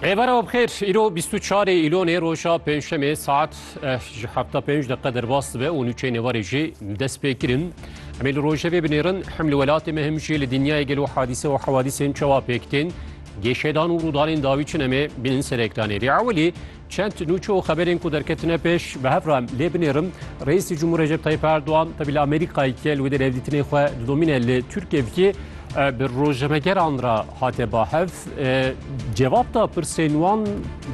Rêbera bixêr îro 24 îlonê roja pênçemê saet eh, ji hefta pênc deqe derbas dibe û nûçeyê nêvarê jî dest pê kirin. Em ê li rojevê binêrin hem li welatê me hem jî li dinyayê gelo hadîse û hewadîsên çawa pêk tên. Gêşedan û rûdanên dawî çin em ê bînin ser ekranê. Rê ewilî Çend nûçe û xeberên ku derketine pêş bi hev re lê binêrim, Reîsê Cumhur Recep Tayyip Erdogan tevî li Amerîkayê ke li wê de revdîtinê xwe didomîne li Tirkiyê bikê, bi rojnamegeran re hate ba hev. Cevap da pirsên wan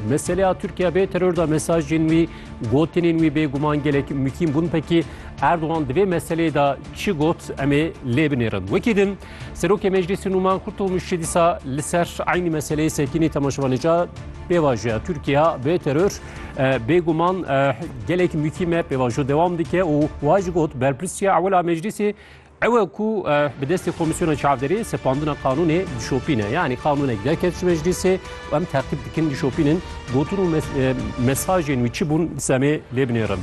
meseleya Tirkiye bê teror da mesajên wî, gotinên wî bêguman gelek mukîm bûn. Pekî Erdogan di vê meseleyê de çi got em ê lê binêrin. Wekî din Serokê Meclîsê Nûman Kurtulmuşçî dîsa li ser eynî meseleyê Sekînî Temaşvanêca pêvajoya Tirkiya bê teror bêguman gelek mûkîme pêvajo dewam dike û wa ji got berpirsiya ewela meclîsê ewe ku bi destê komîsyona çavderê sepandina qanûnê dişopîne yanî qanûnek derket ji meclîsê û em teqîb dikin dişopînin gotin û mesajên wî çi bûn semê lê binêrin.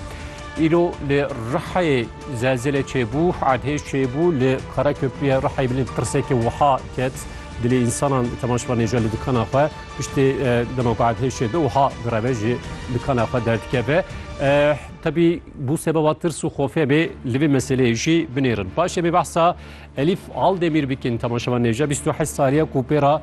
Îro li Rihayê Zelzele çêbû, erdhêj çêbû li Karaköprüyê Rihayê bilind tirsekê wiha ket dilê însanan temaşvan êja li dikana xwe piştê dema ku erdhêj çêbe wiha direve ji dikana xwe derdikeve. Tebî bû sebeba tirs û xofê bê li vê meseleyê jî binêrin. Paşê bê behsa Elîf Aldemîr bikin temaşvan êja 28 saliye ku pê ra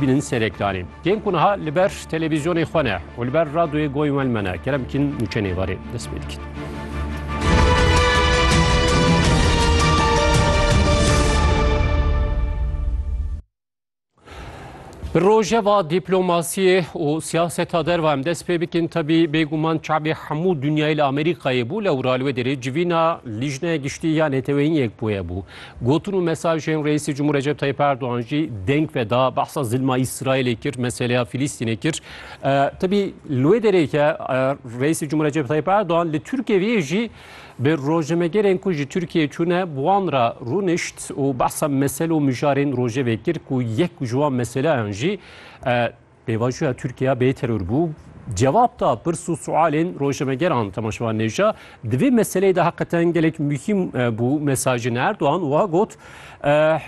Bînin serek danê. Tên ku niha li ber televîzyonê xwe ne û li ber radyoyê goyên we li me ne kerem bikîn nûçe nêvarê dest pê dikin. Bi rojeva dîplomasiyê û siyaseta derva em dest pê bikin tebî bêguman çabê hemû dinyayê li Amerîkayê bû lewra li wê derê civîna Lîjneya Giştî ya Neteweyîn Yekbûye bû. Gotin û mesajên Reîsê Cumhur Recep Tayyip Erdogan jî deng ve da behsa zilma Îsraîlê kir, meseleya Filîstînê kir. Tebî li wê derê ke Reîsê Cumhur Recep Tayyip Erdogan li Tirkiyeyê jî bi rojnamegerên ku ji Tirkiyeyê çûne bi wan re rûnişt û behsa mesele û mijarên rojevê kir ku yek ji wan meseleyan jî Pêvajoya Tirkiye bê teror bû. Cevab da pirs û sualên rojnamegeran Temaşevan Nevja di vê meseleyê de heqeten gelek muhîm bû. Mesajên Erdogan wiha got,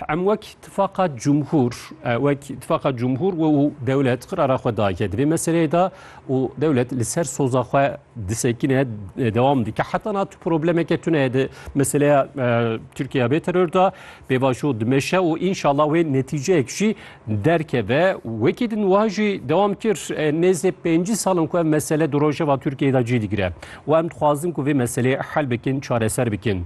Em wek tifaqa cumhur, wek tifaqa cumhur we û dewlet qirara xwe daye di vê meseleyê de û dewlet li ser soza xwe disekine devam dike heta na tu problemeke tune di meseleya Tirkiye bê terör da pêvajo dimeşe û înşallah wê netîceyek jî derkeve wekî din wiha jî devam kir nêzê pêncî salin ku ev mesele di rojeva Tirkiyeyê da cî digire û em dixwazin ku vê meseleyê hel bikin çareser bikin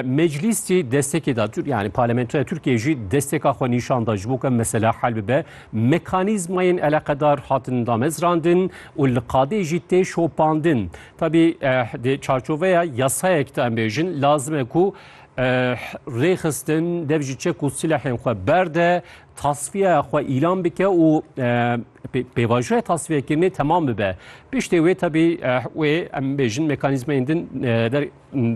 meclîs jî destekê da yani parlamentoya Tirkiyeyê jî desteka xwe nîşan da ji bo ku ev mesele hel bibe Mekanîzmayên eleqedar hatin damezrandin û li qadê jî tê şopandin. Tevî di çarçoveya yasayek de em bêjin lazim e ku rêxistin dev ji çek û silehên xwe berde, tasfiya xwe îlan bike û pêvajoya tasfiyekirinê temam bibe. Piştê wê tevî wê em bêjin mekanîzmayên din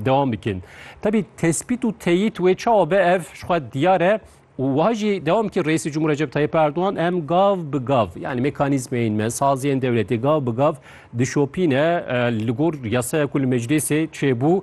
devam bikin. Tevî tespît û teyît wê çawa be ev ji xwe diyar e û wiha jî dewam kir Reîsê Cumhur Recep Tayyip Erdogan em gav bi gav yanî mekanîzmeyên me, saziyên dewletê gav bi gav dişopîne li gor yasaya ku li meclîsê çêbû.